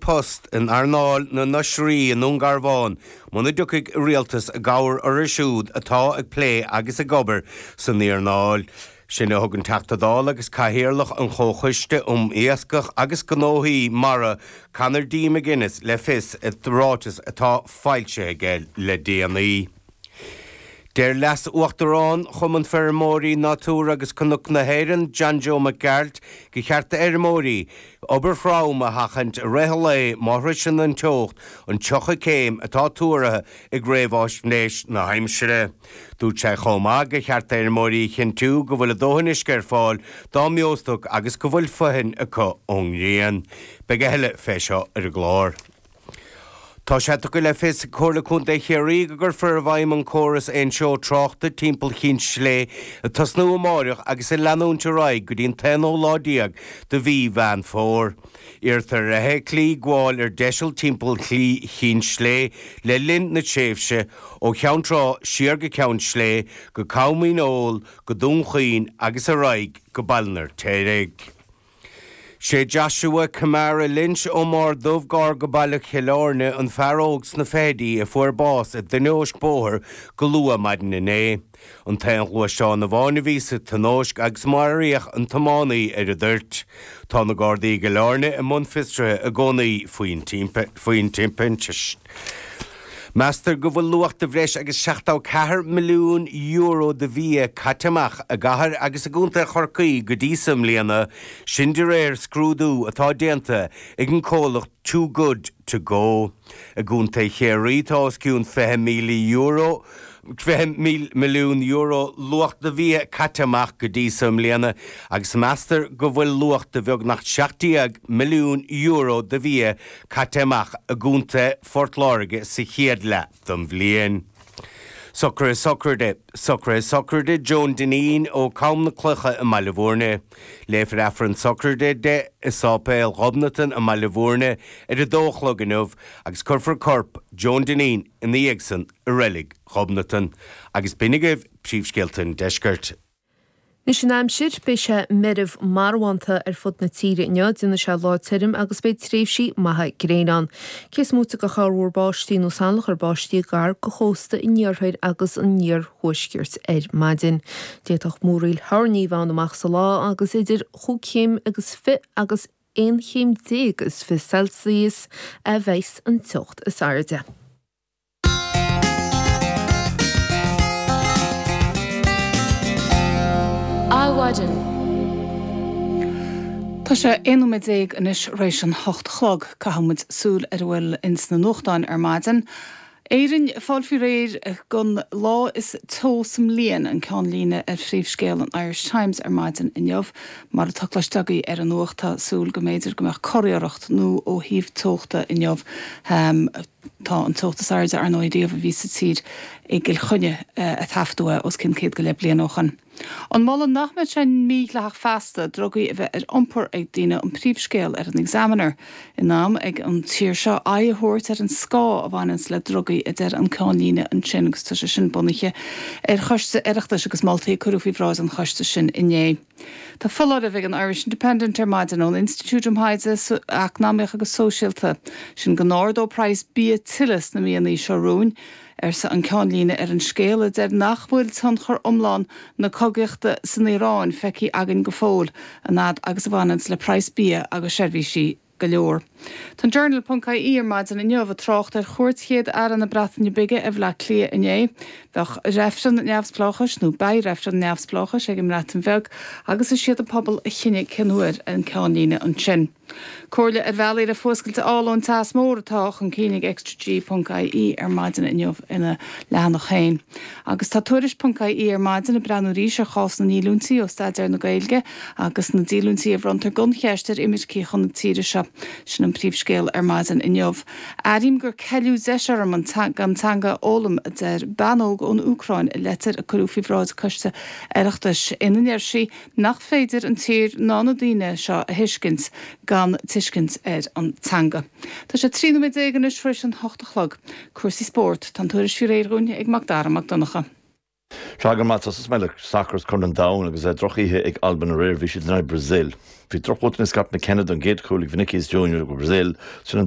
post in earnáil na n-oisrí i nDún Garbhán muna dtiocfaidh an rialtas i gcabhair orthu siúd atá ag plé agus ag obair san earnáil sin a thug an Teachta Dála agus Cathaoirleach an Chomhchoiste um Iascach agus Gnóthaí Mara Conor D. McGuinness le fios i ráiteas atá foilsithe aige le déanaí. Deir Leas-Uachtarán Chumann Feirmeoirí Nádúir agus Cnoc na hÉireann, John Joe Mac Gearailt, gur cheart d'fheirmeoirí obair throm a sheachaint i rith an lae má shroiseann an teocht an 30 céim atá tuartha ag réamháisnéis na haimsire. Dúirt sé chomh maith gur cheart d'fheirmeoirí a chinntiú go bhfuil a dóthain uisce ar fáil dá mbeostoc agus go bhfuil fothain acu ón ngrian. Beidh a thuilleadh fé seo ar an gclár. Tá sé tugtha le fios ag Comhairle Contae Chiarraí go gcuirfear i bhfeidhm an córas aontreo tráchta timpeall Chinn Sléibhe ag tosnú amáireach agus ag leanúint ar aghaidh go dtí an t-aonú lá déag de mhí Mheán Fómhair. Iarrtar ar fheithiclí gabháil ar deiseal timpeall Shlí Chinn Sléibhe le linn na tréimhse ó Cheann Trá siar go Ceann Sléibhe, go Com Dhíneol, go Dún Chaoin agus ar aghaidh go Baile an Fheirtéaraigh. Is é Joshua Kamara Lynch ón mBarr Dubh gar go Baile Chill Airne an fear óg sna fichidí a fuair bás i dtionóisc bóthair go luath maidin inné. An t-aon ghluaisteán amháin a bhí sa tionóisc agus maraíodh an tiománaí ar an dtoirt. Tá na Gardaí i gCill Airne i mbun fiosraithe i gcónaí faoin timpist. Meastar go bhfuil luach de bhreis agus €74 milliún de bhia caite amach i gCathair agus i gContae Chorcaí go dtí seo i mbliana, sin de réir scrúdú atá déanta ag an comhlacht Too Good To Go. I gContae Chiarraí tá os cionn €20, fiche milliún euro, luach de bhia caite amach go dtí seo i mbliana agus meastar go bhfuil luach de bheagnach €17 milliún de bhia caite amach i gContae Phort Láirge sa chéad leath den bhliain. Socruithe Sochraide Socruithe Sochraide Joan Dineen ó Com na Cloiche i mBaile Bhúirne. Léifear Aifreann Sochraide di i Sáipéal Ghobnatan i mBaile Bhúirne ar a dó a chlog inniu agus cuirfear corp Joan Dineen ina dhiaidh san i Reilig Ghobnatan. Agus b'in agaibh príomhscéalta an Deiscirt. Anois an aimsir, beidh sé meirbh marbhánta ar fud na tíre inniu, déanfaidh sé lá tirim agus beidh tréimhsí maithe gréine ann. Cé is moite de chorrmhúr báistí nó salachar báistí gar do chósta an iarthair agus an iarthuaiscirt ar maidin, d'fhéadfadh múraíl thoirní a bheith ann amach sa lá agus idir chúig chéim agus fiche agus aon chéim déag is fiche Celsius a bheas an teocht is airde. Adhmhaidin. Tá sé aon nóiméad déag anois tar éis an hocht a chlog. Caithfidh muid súil ar a bhfuil ins na nuachtáin ar maidin. Éirinn ag fáil faoi réir don lá is teo sa mbliain, an ceannlíne ar phríomhscéal an Irish Times ar maidin inniu. Mar atá cloiste agaibh ar an nuacht, tá súil go mb'fhéidir go mbeadh curiarracht nua ó thaobh teochta inniu. Tá an teocht is airde, ar ndóigh, riamh a bhí sa tír i gCill Chainnigh a taifeadadh os cionn céad go leith bliain ó shin. An moladh nach mbeadh sé mídhleathach feasta drugaí a bheith ar iompar ag daoine an príomhscéal ar an Examiner. In am ag an tír seo aghaidh a thabhairt ar an scáth a bhaineanns le drugaí, a deir an ceannlíne ansin agus tá sé sin bunaithe ar choiste Oireachtais agus moltaí a cuireadh faoi bhráid an choiste sin inné. Tá foláireamh ag an Irish Independent ar maidin ón Institiúid um Thaighde Eacnamaíoch agus Sóisialta, sin go n-ardóidh praghas bia tuilleadh sna míonna seo romhainn, arsa an ceannlíne ar an scéal, a deir nach bhfuil tionchar iomlán na cogaíochta san Iaráin feicthe againn go fóill, an fhad agus a bhaineanns le praghas bia agus seirbhísí. go leor. Tá an Journal ponc IE ar maidin inniu ag trácht ar chuairt Chéad Aire na Breataine Bige ar Bhleá Cliath inné. Bheadh reifreann neamhspleáchais, nó beidh reifreann neamhspleáchais ag an mBreatain Bheag agus is iad an pobal a chinnfidh cén uair an ceannlíne ansin. Comhairle ar bhealaí le fuascailt a fháil ón teas mór atá chun cinn ag Extra G ponc IE ar maidin inniu ina leathanach féin. Agus tá Tuairisc ponc IE ar maidin ag breathnú arís ar chás na ndíolúintí ó staidéar na Gaeilge. Agus na díolúintí a bhronntar gan cheist ar imircigh chun na tíre seo? Sin an príomhscéal ar maidin inniu. Airím gur ceileadh deis orm an teanga a fhoghlaim, a deir bean óg ón Úcráin i leitir a cuireadh faoi bhráid coiste Oireachtais ina ndeir sí nach féidir an tír ná na daoine seo a thuiscint gan tuiscint ar an teanga. Tá sé 13 nóiméad anois tar éis an hocht a chlog. Cúrsaí spóirt, tá an tuairisc faoi réir dúinn ag Macdara Mac Donncha. Sea, go raibh maith agat, tosóidh mé le sacar is Corn an Domhain agus é droch-oíche ag Albain aréir, bhí siad in aghaidh Brazil. Bhí drochbhotún ó Scott McKenna don gcéad chúl ag Vinicius Junior do Brazil, trína